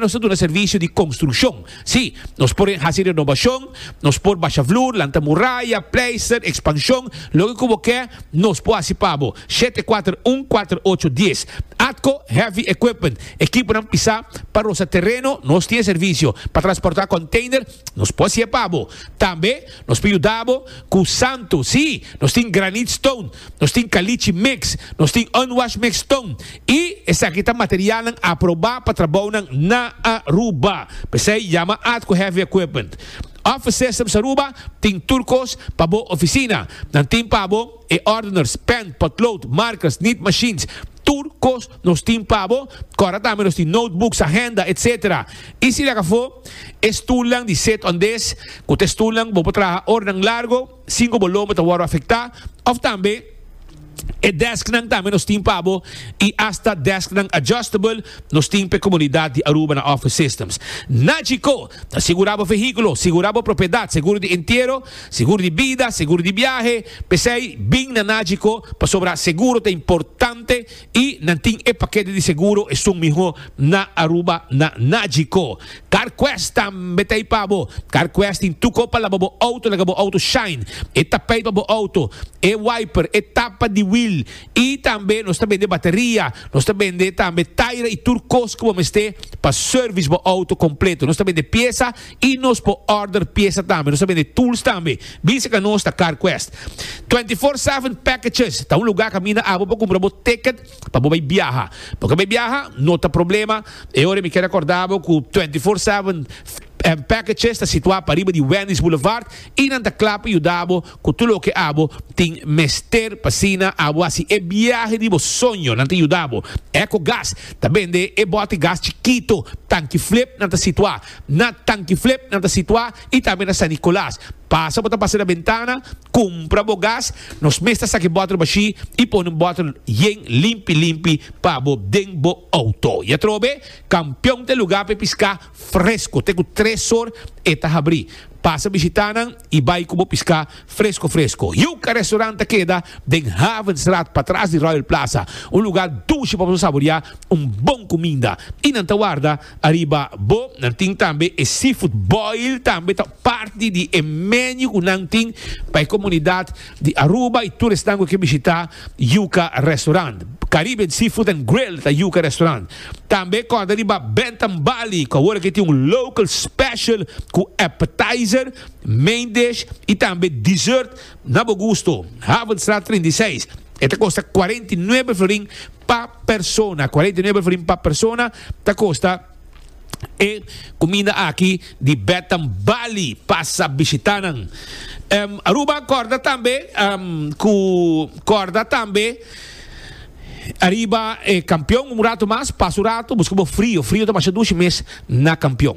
nos ta duna servisio di konstrukshon. Sí, nos por hasi renobashon, nos por basha flur, lanta muraya, pleister, ekspanshon, loke ku bo ke, nos por hasi pa bo. Shete kuater un kuater ocho dies. Atco Heavy Equipment, ekiponan pisá pa rosa tereno, nos tin e servisio. Pa transportá konteiner, nos por hasié pa bo. Tambe nos por yuda bo ku santu, sí, nos tin granit stone. Nos tin kalichi mix, nos tin unwash mix tun i esaki ta materialnan aprobá pa trabounan na Aruba. P'esei yama Ad ku Heavy Equipment. Office Systems Aruba tin tur kos pa bo ofisina. Nan tin pa bo e ordeners, pen, potlood, markers, nit machines. Tur kos nos tin pa bo. Kòrda tambe nos tin notebooks, ahenda, etc. I si lak afó e stulnan di sit-on-dis ku ta e stulnan ku bo por traha ora nan largo. Sinku bo lomba ta wòrdu afektá òf tambe e dèsknan tambe nos tin pa bo i asta dèsknan adjustable nos tin pa e komunidat di Aruba na Office Systems. Na Chicó, ta sigurá bo vehíkulo, sigurá bo propiedat, seguro di entiero, seguro di bida, seguro di biahe. P'esei, bin na Nachicó pasobra seguro ta importante. Y nan tin e paquete di seguro esun miho na Aruba na Nagico. Carquest tambe ta ipa bo. Carquest tin tuco pa laba bo auto laga bo auto shine. E tapijt pa bo auto, e wiper, e tapa di wiel y tambe nos ta bende bateria. Nos ta bende tambe taira y tur cos cu bo mester pa service bo auto completo. Nos ta bende pieza Y nos por order pieza tambe. Nos ta bende tools tambe. Bin seca nos ta CarQuest. Twenty Four Seven Packages ta un lugar a caminda abo pa cumpra bo ticket pa bo bay biaha. Bo ke bay biaha? No ta problema. E ora mi kier acorda bo cu Twenty Four Seven Packages ta situa pariba di Wendy's Boulevard y nan ta cla pa yuda bo cu tur loke abo tin mester pa asina abo haci e biahe di bo soño. Nan ta yuda bo. Ecogas ta bende e bote gas chikito, tanki flip, nan ta situa. Na Tankiflip nan ta situá i tambe na San Nicolas. Pasa bo ta pasa na bentana, kumpra bo gas. Nos mes ta saki bòtel bashí i pone un bòtel yen limpi limpi pa bo den bo outo. I atrobe, Kampion ta e lugá pa e piská fresko. Te ku tres or e ta habrí. Pasa bishitá nan i bai ku bo piská fresko fresko. Yuca Restaurant ta keda den Havenstraat patras di Royal Plaza, un lugá dushi pa bo saboriá un bon kuminda. I nan ta warda Ariba bo nan tin tambe e seafood boil tambe ta parti di e menu ku nan tin pa e komunidat di Aruba i tur esnan ku ke bishita Yuka Restaurant. Caribbean Seafood and Grill ta Yuka Restaurant. Tambe kòrda riba Bentham Bali ku awor ake tin un local special ku appetizer, main dish i tambe dessert. Na bo gusto, Havenstraat trinta i seis, e ta kosta kuarenta i nuebe florin pa persona, kuarenta i nuebe florin pa persona ta kosta e kuminda aki di Betam Bali, pasa bishita nan. Em, Aruba korda tambe em, ku korda tambe ariba e kampion un ratu mas, pasa un ratu, buska bo frio, frio ta masha dushi mes na kampion.